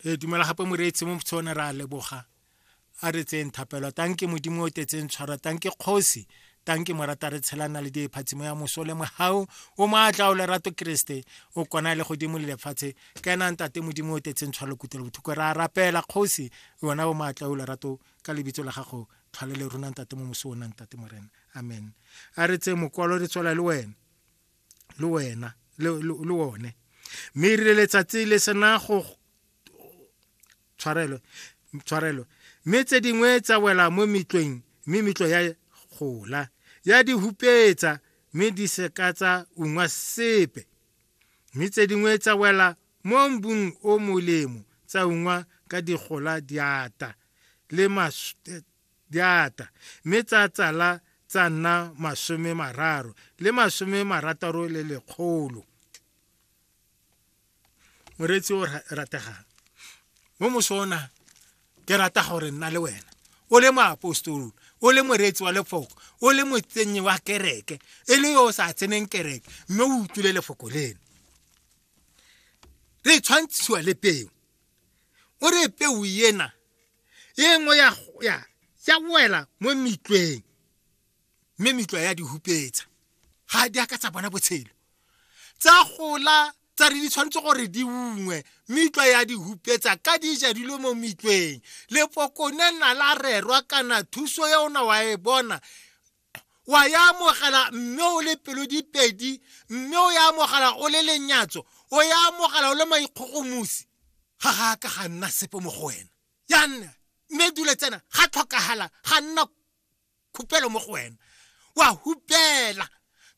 ee tumela gape moreetsi mo motshone re a leboga a re tseyeng thapelo tanke modimo o tetseng tshwara tanke kgosi tanke morata re tshelana le diephatsimo ya moso le mogau o maatla o lerato keresete o kona le godimo le lefatshe ka ena ntate modimo o tetseng tshwalo kutelo bothoko ra rapela kgosi yona o maatla o lerato ka lebitso la gago tlhwalele rona ntate mo moso o nang tate morena amen a re tse mokwalo re tswela le wena le wena le le- le one mme e rile letsatsi le sena go tshwarelo tshwarelo mme tse dingwe tsa wela mo metlweng mme metlo ya gola ya di hupetsa mme di seka tsa ungwa sepe mme tse dingwe tsa wela mo mbung o molemo tsa ungwa ka digola diata le mas- di ata mme tsa tsala tsa nna masome mararo le masome marataro le lekgolo moreetsi o rategang mo mosona ke rata gore nna le wena o le moapostolo o le moreetsi wa lefoko o le motsenyi wa kereke e le yo o sa tseneng kereke mme o utlwile lefoko leno re tshwantshiwa le peo o re peo ena e nngwe ya, ya, ya wela mo metlweng mme metlwa ya di hupetsa ga di a ka tsa bona botshelo tsa gola tsa re di tshwanetse gore di ungwe metlwa ya di hupetsa ka di ja dilo mo metlweng lepokone na la rerwa kana thuso ya ona wa e bona wa ya amogela mme o le pelo dipedi mme o ya amogela o le lenyatso o ya amogela o le maikgogomosi ga ga ka ga nna sepe mo go wena ya nna mme dule tsena ga tlhokagala ga nna khupelo mo go wena wa hupela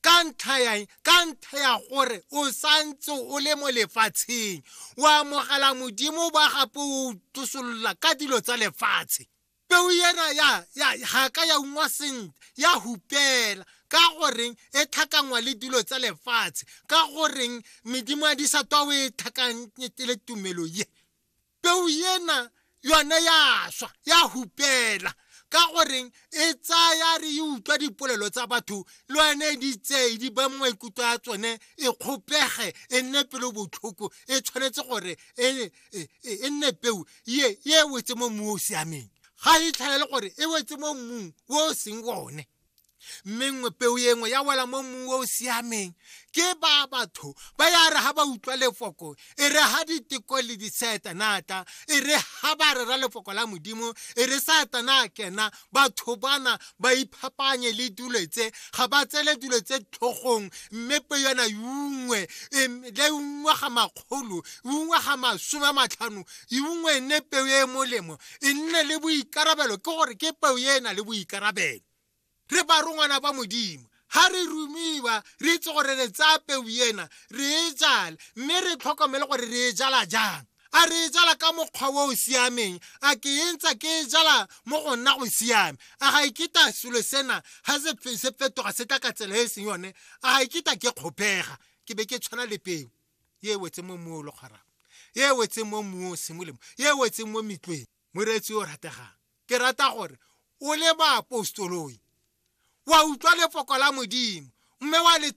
ka ntlha yang ka ntlha ya gore o santse o le mo lefatsheng o amogela modimo ba gape o tosolola ka dilo tsa lefatshe peo ena ya ya ga ka ya ungwa sentle ya hupela ka goreng e tlhakangwa le dilo tsa lefatshe ka goreng medimo ya disatwa o e tlhakanyetele tumelo ye peo ena yone ya swa ya hupela ka goreng e tsaya re e utlwa dipolelo tsa batho le yone di tseye di ba maikutlo a tsone e kgopege e nne pelo botlhoko e tshwanetse gore e e, e, e nne peu ye ye e wetse mo mmung o o siameng ga e tlhaele gore e wetse mo mmung o o seng one mme nngwe peu e nngwe ya wela mo mmung o o siameng ke ba batho ba ya re ga ba utlwa lefoko e re ga diteko le disetanata e re ga ba rera lefoko la modimo e re satana kena batho bana ba iphapanye le dilo tse ga ba tsele dilo tse tlhogong mme pe yona yungwe le ungwa ga makgolo ungwa ga masome a matlhano ungwe e nne peo e e molemo e nne le boikarabelo ke gore ke peo e e na le boikarabelo re ba rongwana ba modimo ga re rumiwa re itse gore re tsaya peu ena re e jale mme re tlhokomele gore re e jala jang a re e jala ka mokgwa o o siameng a ke e ntsa ke e jala mo go nna go siame a ga ikita e selo sena ga se fetoga se tla ka tsela e e seng yone a ga ikita e ke kgopega ke be ke tshwana le peo e wetse mo mmu o le kgwarang e wetseng mo mmung o seng molemo e wetseng mo metlweng moreetsi o rategang ke rata gore o le baapostoloi wa utlwa lefoko la modimo mme wa le